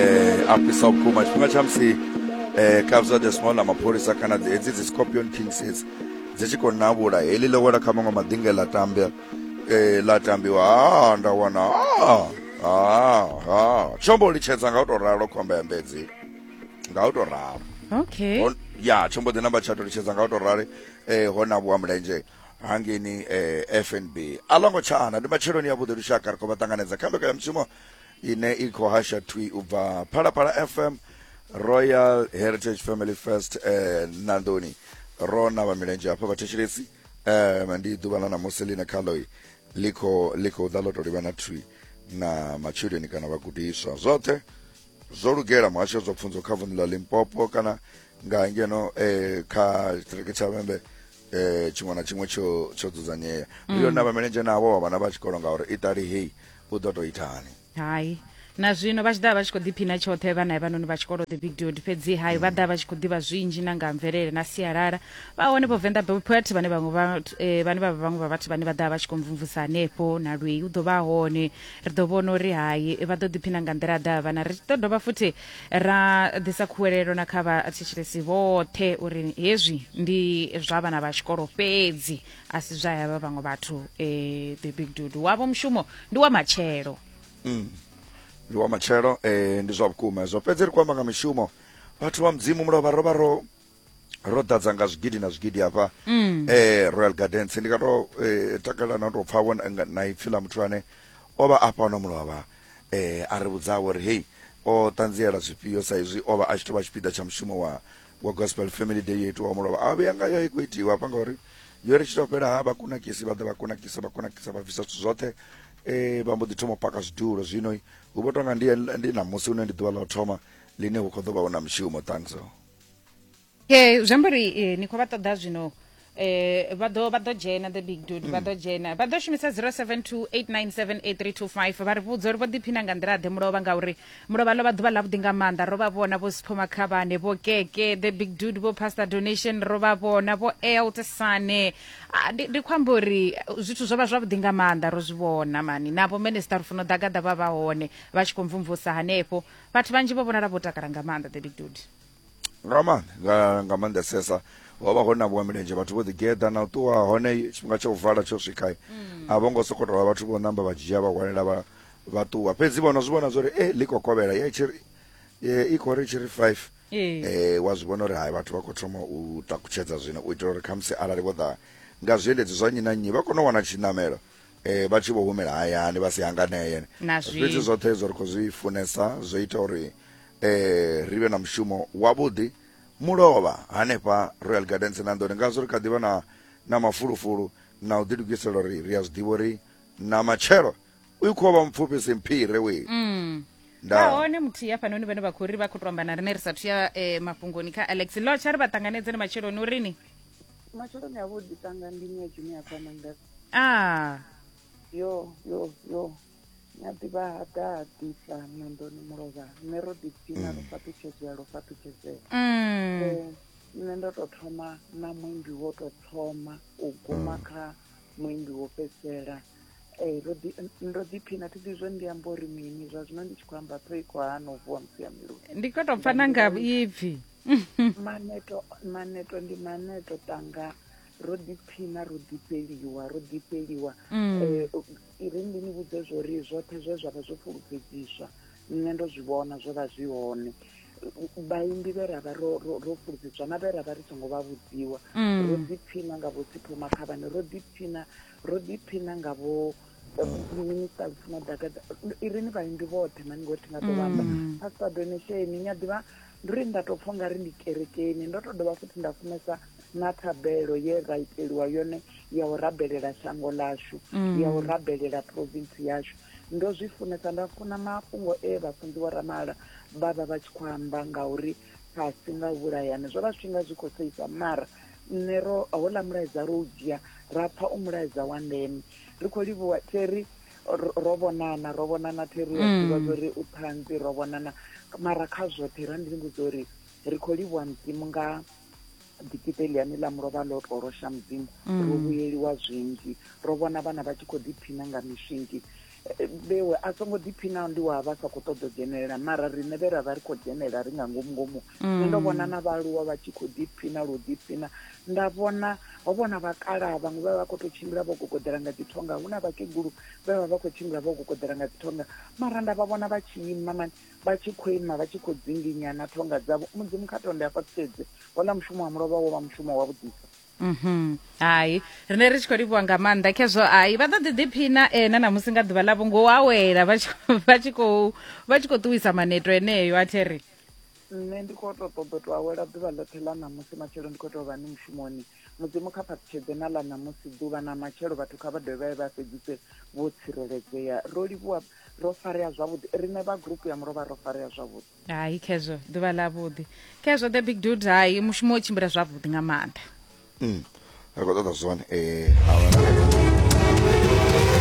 eh a fhisa vhukuma tshifhinga tsha musi eh kabza the small na mapholisa kana dzi- hedzi dzi scorpion kings hedzi dzi tshi khou navhula heḽi ḽo wela kha maṅwe madinge ḽa tambea eh ḽa tambiwa ha nda wana ha ha ha tshomo litshedza nga u tou ralo khomba ya mbedzi nga u tou ralo okay Hon- ya tsho mbo ḓi namba tsha ṱolutshedza nga u tou rali eh ho na vhuwa mulenzhe hangeni eh fnb a ḽo ngo tshana ndi matsheloni ya vhuḓi lushaka ri khou vha ṱanganedza kha mbekanyamushumo ine i khou hasha thwi u bva phalaphala fm royal heritage family first eh, nandoni ro na vha milenzhe hafha vhathetshelesi eh, ndi ḓuvha ḽa ṋamusi ḽine khaloi ḽi khou ḽi khou ḓa ḽo to livha na thwi na matshudeni kana vhagudiswa zwoṱhe zwo lugela muhasho zwa pfunzo kha vunḓu ḽa limpopo kana nga ngeno eh, kha tshiṱiriki tsha vhembe eh tshiṅwe na tshiṅwe tsho tsho dzudzanyea mm. ndi yone vhamenedzhe navho vha vhana vha tshikolo ngauri itali hei u ḓo tou ithani hayi na zwino vha tshi ḓa vha tshi khou ḓiphina tshoṱhe vhana vhanoni vha tshikolo the big dod fhedzi hai vha ḓa vha tshi khou ḓivha zwinzhi na nga mvelele na sialala vha hone vho venḓa bopet vhane vhaṅwe vha eh, vhane vha vhaṅwe vha vhathu vhane vha ḓa vha tshi khou mvumvusa hanefho na lwei u ḓo vha hone ri ḓo vhona uri hai vha ḓo ḓiphina nga nḓila ḓa vhana ri ḓo dovha futhi ra ḓisa khuwelelo na kha vhathetshelesi vhoṱhe uri hezwi ndi zwa vhana vha tshikolo fhedzi a si zwa yavha vhaṅwe vhathu um the big dudu wavho mushumo ndi wa matshelo mm. ndi wa matshelo um ndi zwa vhukuma hezwo fhedzi ri khou amba nga mishumo vhathu vha mudzimu mulovha ro vha ro ro ḓadza nga zwigidi na zwigidi hafha mm. eh royal gardens ndi nga to eh, takalela na to pfa vho na ipfi ḽa muthu ane o vha a fhano mulovha eh a ri vhudza uri hey o ṱanziela zwifhio sa izwi o vha a tshi to vha tshipiḓa tsha mushumo wa wa gospel family day yo itiwa mulovha a vhuya ngayo i khou itiwa hafha ngauri yo ri tshi to fhela ha vha kunakisi vha ḓa vha kunakisa vha kunakisa vha bvisa zwithu zwoṱhe eh vha mbo ḓi thoma u paka zwidulo zwino hu vho tonga ndi ndi na musi une ndi ḓuvha ḽa u thoma line hu khou ḓo vha hu na mushumo thanks okay zwi amba uri eh, ni khou vha ṱoḓa zwino eh vha ḓo vha ḓo dzhena the big dude vha ḓo dzhena vha ḓo shumisa 0728978325 vha ri vhudza uri vho ḓiphina nga nḓila ḓe mulovha ngauri mulovha ḽo vha ḓuvha ḽavhuḓi nga maanḓa ro vha vhona vho sipho makhavhane vho keke the big dude vho pastor donation ro vha vhona vho elt sane Ah, ndi ndi khou amba uri eh, zwithu zwo vha zwavhuḓi nga maanḓa ro zwi vhona mani navho minister ri funa u ḓagaḓa vha vha hone vha tshi khou mvumvusa hanefho vhathu vhanzhi vho vhonala vho takala nga maanḓa the big dude nga maanḓa nga, nga maanḓesesa ho vha ho namuwa milenzhe vhathu vho ḓigeḓa na u ṱuwa hone tshifhinga tsha u vala tsho swika mm. a vho ngo sokou tovha vhathu vho namba vha dzhia vha hwalela vha vha ṱuwa fhedzi vhono zwi vhona zwa uri e ḽi kokovhela ye tshiri i khou ri tshiri five eh wa zwi vhona uri hai vhathu vha khou thoma u takutshedza zwino u itela uri khamusi arali vho ḓa nga zwiendedzi zwa nnyi na nnyi vha kone u wana tshiṋamelo eh vha tshi vho humela hayani vha si hanganeye fhedzi zwoṱhe hezwo ri khou zwi funesa zwo ita uri eh ri vhe na mushumo wavhuḓi mulovha hanefha royal gardens na nḓoni ngazwo ri kha ḓivha na na mafulufulu na u ḓilugisela uri ri a zwi ḓivha uri na matshelo u khou vha mupfufhi simphire we mm. nahone muthihi hafhanoni vhane vha khou ri vha khou to amba na rine ri sathu ya eh, mafhungoni kha alex lotsha ri vha ṱanganedze ni matsheloni urini matsheloni avhuḓi tanga ndi ni ya juni ya a yo yo yo na ḓivha ha ḓaḓisa mandoni mulovha nṋe ro ḓipfina ro fhaṱutshedzea ro fhaṱutshedzea mm. Eh, nṋe ndo tou thoma na muimbi wo tou thoma u guma kha muimbi wo fhedzisela Eh, ro ḓi- ndo ḓiphina thi ḓi zwo ndi amba uri mini zwa zwino ndi tshi khou amba ṱhoho i khou hana u vuwa musi ya miluni ndi khou tou pfa na nga ipfi maneto maneto ndi maneto tanga ro ḓipfina ro ḓifheliwa ro ḓifheliwa mm. eh, ri ndi ni vhudze zwo ri zwoṱhe zwe zwa vha zwo fulufhedziswa nṋe ndo zwi vhona zwo vha zwi hone vhaimbi vhe ra vha ro fulufhedziswa na vhe ra vha ri songo vha vhudziwa mm. ro ḓipfina nga vho sipho makhavhane ro ḓipfina ro ḓipfina nga vho minista lufuna ḓaka irini vhaimbi vhoṱhe mani ngori thi nga ḓo vhamba mm. pastor donation ni a ḓivha Ndi uri nda tou pfa u nga ri ndi kerekeni. Ndo tou dovha futhi nda funesa na thabelo ye ra iteliwa yone ya u rabelela shango ḽashu, ya u rabelela province yashu. Ndo zwi funesa, nda funa mafhungo e Vhafunzi Vho Ramala vha vha vha tshi khou amba nga uri fhasi nga u vhulayana. Zwo vha zwi tshi nga zwi khou seisa mara nṋe ro, houḽa mulaedza ro u dzhia ra pfa u mulaedza wa ndeme. Ri khou livhuwa Terry ro vhonana ro vhonana thi ri a mm. ḓivha zwori u ṱhanzi ro vhonana mara kha zwoṱhe ra ndi ni vhudza uri ri khou livhuwa mudzimu nga dikita eliani ḽa mulovha ḽo to losha mudzimu mm. ro vhuyeliwa zwinzhi ro vhona vhana vha tshi khou ḓiphina nga mishingi vhewe a songo ḓiphinaho ndi wa vha sa khou ṱoḓa u dzhenelela mara riṋe vhe ra vha ri khou dzhenelela ri nga ngomu ngomu nṋe ndo mm. vhona na vhaaluwa vha tshi khou ḓiphina lu ḓiphina Nda vhona ho vha hu na vhakalaha vhaṅwe vhe vha vha khou tou tshimbila vho gogoḓela nga dzi thonga, hu na vhakegulu vhe vha vha vha khou tshimbila vho gogoḓela nga dzi thonga. Mara nda vha vhona vha tshi ima mani, vha tshi khou ima vha tshi khou dzinginya na thonga dzavho. Mudzimu kha tonde a fhaṱutshedze. Houḽa mushumo wa mulovha wo vha mushumo wavhuḓisa. Mhm. Hai, rine ri tshi khou livhuwa nga maanḓa khezwo. Hai, vha ḓo ḓi ḓiphina eh, na ṋamusi nga ḓuvha ḽavho ngo awela vha tshi vha tshi khou vha tshi khou ṱuwisa maneto eneo a thi ri. Nṋe ndi khou tou ṱoḓa u tou awela ḓuvha ḽoṱhe ḽa ṋamusi, matshelo ndi khou tou vha ni mushumoni. Mudzimu kha fhaṱutshedze na ḽa ṋamusi ḓuvha na matshelo, vhathu kha vha dovhe vha ye vha fhedzise vho tsireledzea. Ro livhuwa, ro farea zwavhuḓi. Riṋe vha gurupu ya mulovha ro farea zwavhuḓi. Hai khezwo, ḓuvha ḽavhuḓi. Khezwo the big dude, hai mushumo wo tshimbila zwavhuḓi nga maanḓa. Umm, ri khou ṱoḓa zwone, ee, awara.